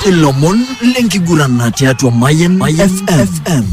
ilomon lenkigurana tiatua mayen fm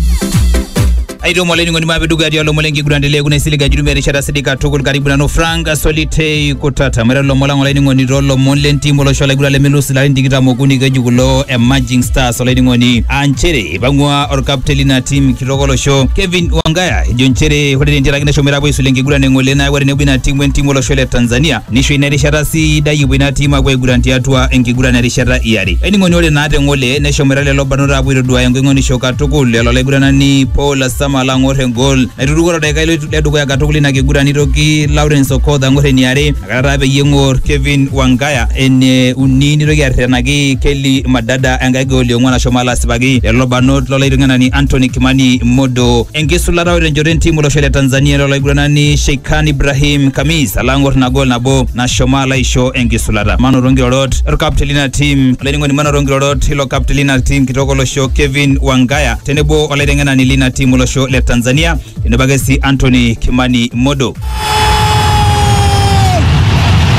aitomo olainining'oni maapeduka tialo lomon lenkiguran telee kuna isilig ajutumia erishata sidai katukul karibu nanu frank solitei kutata maiteru lomon lang olainining'oni toolomon lentim olosho laiguran lemelusi larin tikitam okuni keji kulo emerging stars olainining'oni aa nchere ipang'ua orkapten lina tim kitok olosho kevin wangaya ejo nchere ore tentiaraki neshomoita apuo aisula enkiguran eng'ole neeku ore tenebo ina tim wentim olosho le tanzania Nisho ina erishata sidai epuo ina tim apuo aiguran tiatua enkiguran erishata iare. Ening'oni ore naa te ng'ole neshomoita lelo barnot apuo aitoduaya engoing'onisho katukul lelo laiguranani Paul Asama alo ang'or engol naituruko to daikai le dukuya katukul ina kiguran nitoki Lawrence Okoth ang'or eniare nakata taa peyie eng'or Kevin Wangaya ene uni nitoki arretenaki Kelly Madada enkae gol e ong'uan ashomo alo asipaki lelo barnot lo laiteng'enani Anthony Kimani Modo enkisulata o tenchoto entim olosho le Tanzania ilo laiguranani Sheikhan Ibrahim Kamis alo ang'or ina gol nabo nashomo alo aisho enkisulata. Manoto nkirorot olkapteni lina tim olainining'oni manoto nkirorot ilo kapteni lina tim kitok olosho Kevin Wangaya tenebo olaiteng'enani lina tim olosho le Tanzania tenebo ake sii Anthony Kimani Modo.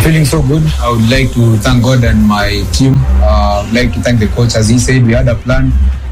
Feeling so good. I would like to thank God and my team. Uh, I would like to thank the coach. As he said, we had a plan.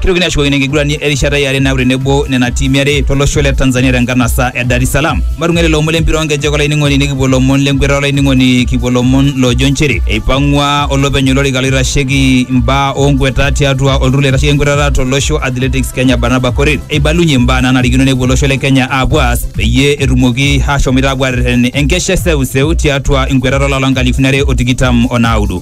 Kitokini ashukokino enkiguran erishata e are naaku tenebo nena tiimi are tolosho le Tanzania tenkanasa e Dar es Salaam. Matung'uai lelo omon lempira oonkejek olainining'oni nikipuo lomon lenkweta olainining'oni kipuo lomon loojo nchere eipang'ua olopeny olorika loitasheki mbaa oonkweta tiatua olturur loitasheki enkwetata tolosho Athletics Kenya Barnaba Korir eibalunye mbaa naanarikino nepuo olosho le Kenya aapuo aas peyie etumoki aashomoita aapuo aarreten enkesha e seuseu tiatua nkwetata olapa lonkalifuni are o tikitam o naudo.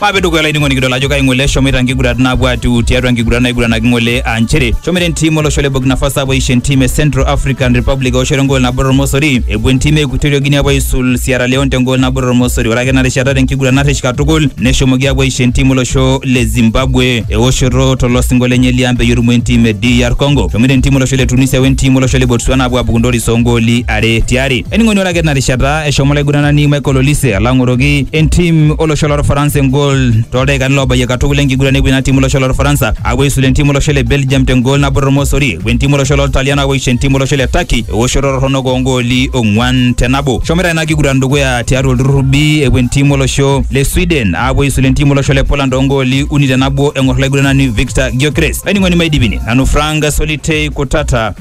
Maape dukuya olainining'oni kidol ajo kai ng'ole eshomoita nkigurat naapuo atiu tiatua nkigurat naiguranaki ng'ole aa nchere shomoita entim olosho le Burkina Faso apuo aisho entim e Central African Republic eoshoto engool nabo tormosori epuo entim e Equatorial Guinea apuo aisul Sierra Leone tengool nabo tormosori ore ake ena rishata tenkiguran narrish katukul neshomoki apuo aisho entim olosho le Zimbabwe eoshoto tolosingo lenye liang peyie erumoo entim e DR Congo shomoita entim olosho le Tunisia wentim olosho le Botswana apuo apuku ntoris oongooli are tiare Ening'oni ore ake tina rishata eshomo olaiguranani Michael Olise alo ang'oroki entim olosho lorfaransa engol toldaikani loobayie katukul enkiguran epuo ina tim olosho lorfaransa apuo aisula entim olosho le Belgium tengol nabo tormosori epuo entim olosho loltalian apuo aisho entim olosho le Turkey ewoshoto torronok oongooli ong'uan te nabo. Eshomoita ina kiguran dukuya tiatua olturrur B epuo entim olosho le Sweden apuo aisula entim olosho le Poland oongooli uni te nabo eng'or olaiguranani Viktor Gyökeres. Olainining'oni maidipini nanu Frank Solitei Kutata.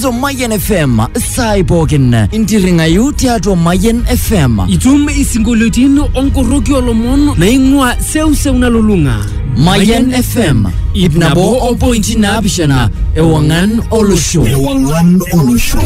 to Mayan FM saai pookin intirring'ayu tiatua Mayan FM. Itum isinkolioitin onkoroki olomon naing'ua seuseu nalulung'a. Mayan FM ip nabo o pointi naapishana ewang'an olosho. Ewang'an olosho.